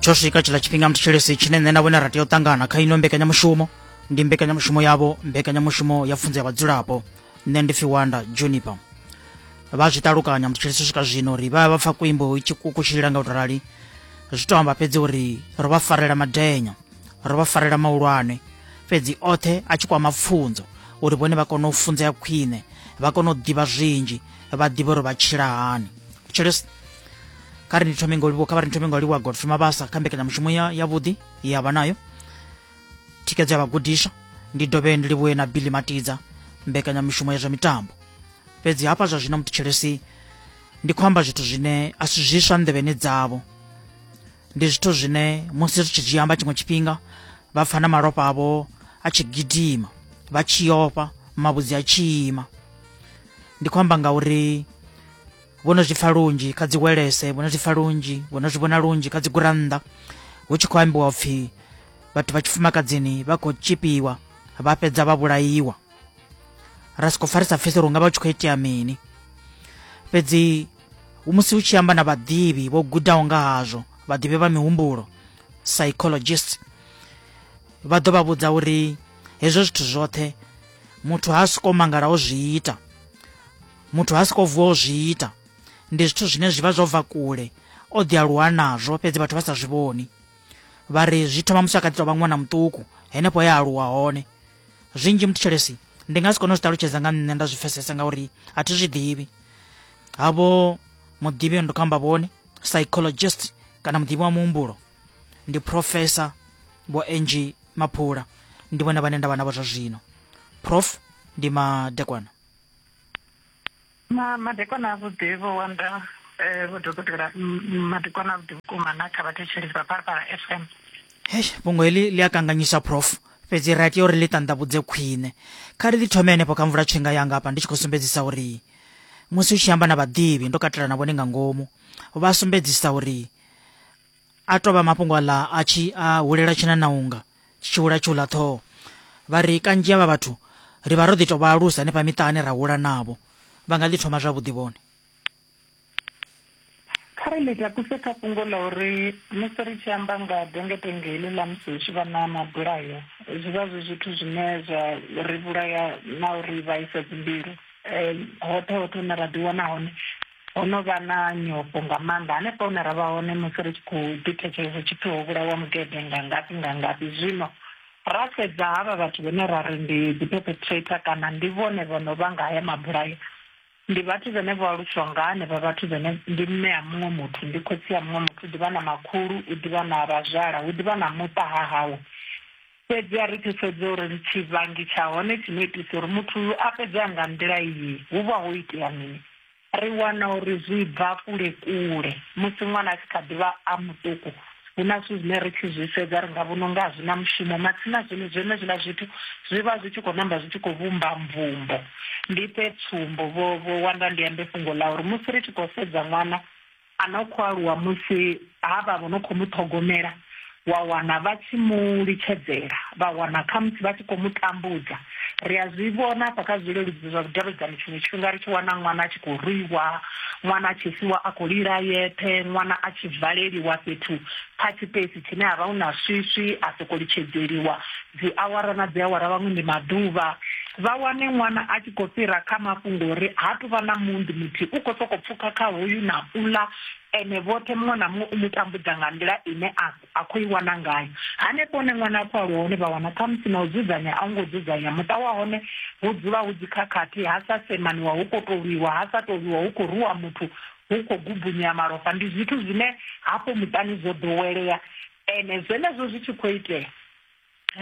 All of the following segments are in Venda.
tsho swika tshiḽa tshifhinga mthetshelesi tshine nṋe na vhone ra tea u ṱangana kha ino mbekanyamushumo ndi mbekanyamushumo yavho mbekanyamushumo ya pfunzo ya vhadzulapo nṋe ndi pfi wanda juniper vha zwi ṱalukanya mthetshelesi u swika zwino uri vha vha pfa kuimbo itshi kukutshilila nga u to rali zwi to amba fhedzi uri ro vha farela madenya ro vha farela mahulwane fhedzi oṱhe a tshi kwama pfunzo uri vhone vha kone u funzea khwine vha kone u ḓivha zwinzhi vha ḓivhe uri vha tshila hani tshilesi kha ri ni thome nga ulivhuwa kha vha ri ni thome nga ulivhuwa godfrey mabasa kha mbekanyamushumo ya yavhuḓi ya vha nayo thikedzo ya vhagudiswa ndi dovhe ndi livhuye na billy matidza mbekanyamushumo ya zwa mitambo fhedzi hafha zwa zwino mutitshelesi ndi khou amba zwithu zwine a si zwiswa nḓevheni dzavho ndi zwithu zwine musi ri tshi zwi amba tshiṅwe tshifhinga vha pfa na malofha avho a tshi gidima vha tshi ofha mavhudzi a tshi ima ndi khou amba ngauri vho no zwi pfa lunzhi kha dziwelese vho no zwi pfa lunzhi vho no zwi vhona lunzhi kha dzigurannḓa hu tshi khou ambiwa upfhi vhathu vha tshifumakadzini vha khou tshipiwa vha fhedza vha vhulaiwa ra soko pfa ri sa pfesi uri unga vha u tshi khou itea mini fhedzi musi u tshi amba na vhaḓivhi vho gudaho nga hazwo vhaḓivhi vha mihumbulo psychologist vha ḓo vha vhudza uri hezwo zwithu zwoṱhe muthu ha soko mangala o zwi ita muthu ha soko vuwa u zwi ita ndi zwithu zwine zwi vha zwo bva kule o ḓi aluwa nazwo fhedzi vhathu vha sa zwi vhoni vha ri zwi thoma musi a kha ḓi tou vha ṅwana muṱuku henefho ya aluwa hone zwinzhi muthetshelesi ndi nga si kone u zwi ṱalutshedza nga nṋe nda zwi pfesesa ngauri a thi zwi ḓivhi havho muḓivhi yo ndo kho amba vhone psychologist kana muḓivhi wa muhumbulo ndi professor vho angi maphula ndi vhone vhane nda vha navho zwa zwino prof ndi madekwana ma madekwana avhuḓi vho wanda eh, vho dokotela m- madekwana avhuḓi vhukuma na kha vhathetshelesi vha phalaphala fm hei fhungo heḽi ḽi a kanganyisa prof fhedzi ra tea uri ḽi ṱanḓavhudze khwine kha ri ḽi thome henefho kha mvula tshinga yanga hafha ndi tshi khou sumbedzisa uri musi u tshi amba na vhaḓivhi ndo katela na vhone nga ngomu vha sumbedzisa uri a tou vha mafhungo aḽa a tshi a hulela tshina na unga tshi tshi hula tshi hula ṱhoho vha ri kanzhi avha vhathu ri vha ro ḓi tou vha alusa hanefha miṱani ra hula navho vha nga ḓi thoma zwavhuḓi vhone kha ri ḽi takuse kha fhungo ḽa uri musi ri tshi amba nga dengetenge heḽi ḽa musi hu tshi vha na mabulayo zwi vha zwi zwithu zwine zwa ri vhulaya na uri vhaisa dzimbilu um hoṱhe hoṱhe hune ra ḓiwana hone ho no vha na nyofho nga maanḓa hanefha hune ra vha hone musi ri tshi khou ḓithetshelesa tshipfi ho vhulawa mugede nga ngafhi nga ngafhi zwino ra sedza havha vhathu vhane ra ri ndi dziperpetrator kana ndi vhone vho no vha nga haya mabulayo ndi vhathu vhene vho aluswa nga hanevha vhathu vhene ndi mme a muṅwe muthu ndi khotsi a muṅwe muthu u ḓivha na makhulu u ḓivha na vhazwala hu ḓivha na muṱa ha hawe Fhedzi a ri ḓi sedze uri ndi tshivhangi tsha hone tshi no itisa uri muthu uyu a fhedze a nga nḓila iyi. Hu vha ho itea mini? Ri wana uri zwi bva kule-kule. Musi ṅwana a tshi kha ḓi vha a muṱuku, hu na zwithu zwine ri tshi zwi sedza ri nga vhona u nga a zwi na mushumo, matsina zwino zwenezwiḽa zwithu zwi vha zwi tshi khou namba zwi tshi khou vhumba mvumbo. Ndi fhe tsumbo, vho, vho Wanda ndi ambe fhungo ḽa uri musi ri tshi khou sedza ṅwana a no khou aluwa musi havha vho no khou mu ṱhogomela wa wana vha tshi mu litshedzela vha wana khamusi vha tshi khou mu tambudza ri a zwi vhona hafha kha zwileludzi zwa vhudavhidzani tshiṅwe tshifhinga ri tshi wana ṅwana a tshi khou rwiwa ṅwana a tshi siwa a khou lila yeṱhe ṅwana a tshi valeliwa fhethu kha tshipesi tshine ha vha hu na swiswi a sokou litshedzeliwa dziawara na dziawara vhaṅwe ndi maḓuvha vha wane ṅwana a tshi khou fhira kha mafhungo uri ha tu vha na mundi muthihi u khou sokou pfhuka kha hoyu na ula ene vhoṱhe muṅwe na muṅwe u mu tambudza nga nḓila ine a khou i wana ngayo hanefho hone ṅwana a khou aluwa hone vha wana khamusi na u dzudzanya a u ngo dzudzanya muṱa wa hone hu dzula hu dzikhakhathi ha sa semaniwa hu khou tou lwiwa ha sa tou lwiwa hu khou ruwa muthu hu khou gubunyea malofha ndi zwithu zwine hafho muṱani zwo ḓowelea ene zwenezwo zwi tshi khou itea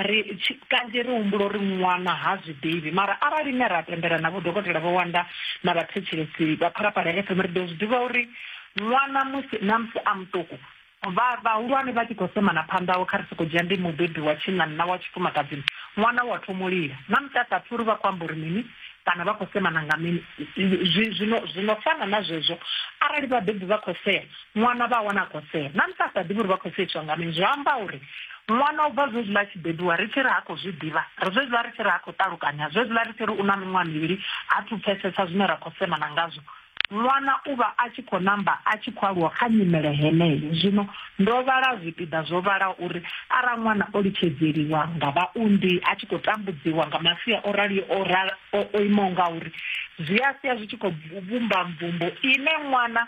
ri kanzhi ri humbula uri ṅwana ha zwi ḓivhi mara arali ne ra tendela na vhodokotela vho wanda na vhathetshelesi vha pharaphala ya fm ri ḓo zwi ḓivha uri ṅwana musi na musi a muṱuku vha vhahulwane vha tshi khou semana phanḓaho kha ri soko dzhia ndi mubebi wa tshinnani na wa tshifumakadzini ṅwana wa thoma u lila na musi a sa pfhi uri vha khou amba uri mini kana vha khou semana nga mini zwino zwino fana na zwezwo arali vhabebi vha khou sea Ṅwana vha a wana a khou sea. Na musi a sa ḓivhi uri vha khou seiswa nga mini, zwi amba uri ṅwana u bva zwezwiḽa a tshi bebiwa ri tshi ri ha khou zwi ḓivha, ri zwezwiḽa ri tshi ri ha khou ṱalukanya, zwezwiḽa ri tshi ri u na miṅwaha mivhili ha thu pfesesa zwine ra khou semana ngazwo. Ṅwana u vha a tshi khou namba a tshi khou aluwa kha nyimele heneyo. Zwino ndo vhala zwipiḓa zwo vhalaho uri arali ṅwana o litshedzeliwa nga vhaunḓi, a tshi khou tambudziwa nga masia o raliho o imaho ngauri, zwi a sia zwi tshi khou vhumba mvumbo ine ṅwana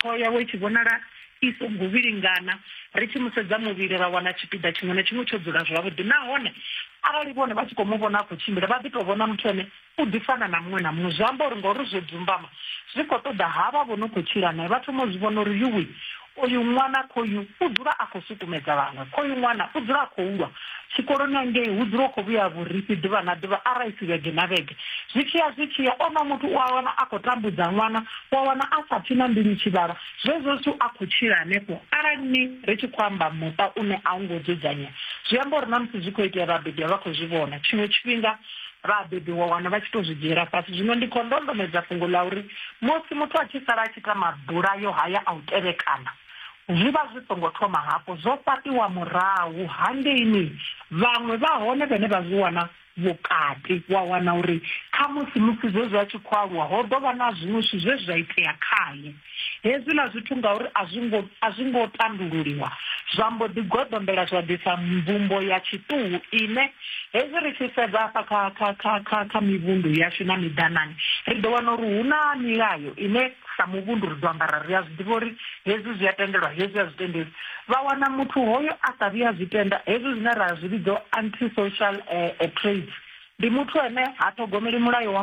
Ṱhoho yawe i tshi vhonala i songo vhilingana, ri tshi mu sedza muvhili ra wana tshipiḓa tshiṅwe na tshiṅwe tsho dzula zwavhuḓi. Nahone arali vhone vha tshi khou mu vhona a khou tshimbila, vha ḓi tou vhona muthu ane u ḓi fana na muṅwe na muṅwe. Zwi amba uri ngauri zwo dzumbama, zwi khou ṱoḓa havha vho no khou tshila nae vha thoma u zwi vhona uri, Yuwi! Oyu ṅwana khoyu u dzula a khou sukumedza vhaṅwe. Khoyu ṅwana u dzula a khou lwa. Tshikoloni hangei hu dzula hu khou vhuya vhurifhi ḓuvha na ḓuvha, arali i si vhege na vhege. Zwi tshi ya zwi tshi ya, onoyo muthu u a wana a khou tambudza ṅwana wa wana a sa pfi na mbilu tshivhalo zwezwo zwithu a khou tshila hanefho arali ni ri tshi khou amba muṱa une a u ngo dzudzanya zwi amba uri na musi zwi khou itea vhabebi a vha khou zwi vhona tshiṅwe tshifhinga vhabebi wa wana vha tshi tou zwi dzhiela fhasi zwino ndi khou ndondomedza fhungo ḽa uri musi muthu a tshi sala a tshi ita mabulayo haya a u tevhekana zwi vha zwi songo thoma hafho zwo fhaṱiwa murahu hangeini vhaṅwe vha hone vhane vha zwi wana vhukati, wa wana uri khamusi musi zwezwi a tshi khou aluwa ho ḓo vha na zwiṅwe zwithu zwe zwa itea khae. Hezwiḽa zwithu ngauri a zwi ngo a zwi ngo tandululiwa, zwa mbo ḓi goḓombela zwa ḓisa mvumbo ya tshiṱuhu ine hezwi ri tshi sedza hafha kha kha kha kha kha mivhundu yashu na miḓanane ri ḓo wana uri hu na milayo ine sa muvhundu ri ḓo ambara ri a zwi ḓivha uri hezwi zwi a tendelwa hezwi a zwi tendeli vha wana muthu hoyo a sa vhuya zwi tenda hezwi zwine ra zwi vhidzo anti social eh, eh, trades ndi muthu ane ha ṱhogomeli mulayo wa